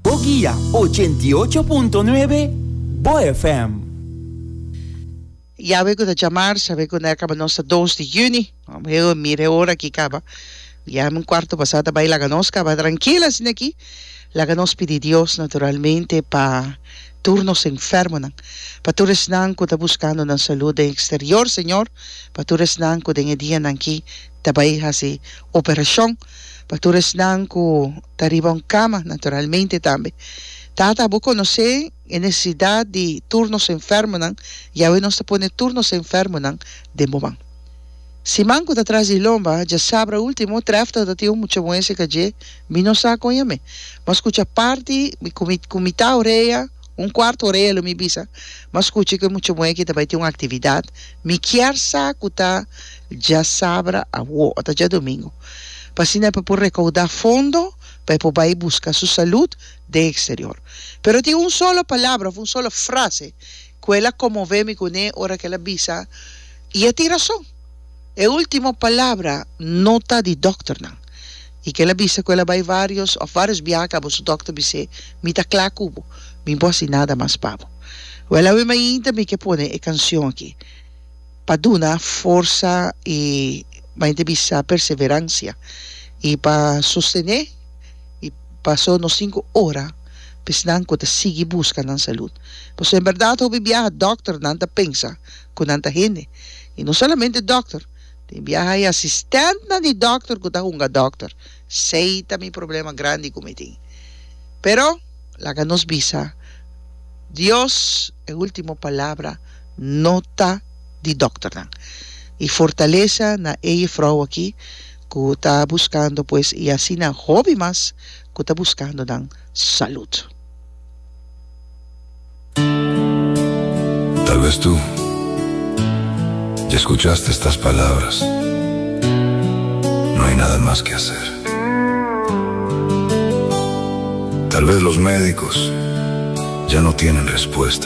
Bo guia ochenta i ocho punto nuebe Bo FM. Yahweh cu ta jamar, sabe cu n'er caba nos ta dos di juni. Mam heo mira e ora aki caba. Biaha mi cuarto basa ta bay laga nos caba trankil asina aki. Laga nos pidi Dios naturalmente pa tur nos enfermonan, pa tur esnan cu ta buscando nan salud den exterior Señor, pa tur esnan cu den e dianan aki ta bai hasi operashon pa tur esnan ku ta riba un kama, naturalmente tambe. Tata, bo konosé e nesesidat di tur nos enfermonan, i awe nos ta pone tur nos enfermonan den bo man. Siman ku ta tras di lomba, djasabra último, Trefta ta tin un mucha muéstrika dje, mi no sa kon i amé. Mas kucha parti mi ku mi ku mitá orea, un kuartu orea lo mi bisa, mas kuchi ku e mucha muhé ki ta bai tin un aktividat, mi kier sa ku ta. Dja sabra awo, ata djadomingo, pa asina e por por rekoudá fondo pa e por bai buska su salud den eksterior. Pero tin un solo palabra òf un solo frase ku el a konmové mi kuné ora ku el a bisa, I a tin rason. E último palabra no ta di dòkternan. I kila bisa ku el a bai vários òf vários biaha kaba su dòkter bis'é, Mi ta kla ku bo. Mi bo hasi nada mas pa bo. Wèl, awe mainta mi ke pone e kanshon akí. pa duna forsa i mai te bisa perseveransia i pa sostené i paso nos sinku ora pa esnan ku ta sigui buska nan salud paso en berdad hopi biaha dòkternan ta pensa ku nan ta hende i no solamente dòkter tin biaha hay asistentnan di dòkter ku ta hunga dòkter sei ta mi problema grandi ku mi tin pero laga nos bisa Dios e ultimo palabra. no ta di dokternan. E fortalesa na e jefrouw aki ku ta buskando pues i asina hopi mas ku ta buskando nan salud. Tal vez tu ya escuchaste estas palabras, No hay nada más que hacer. Tal vez los médicos ya no tienen respuesta.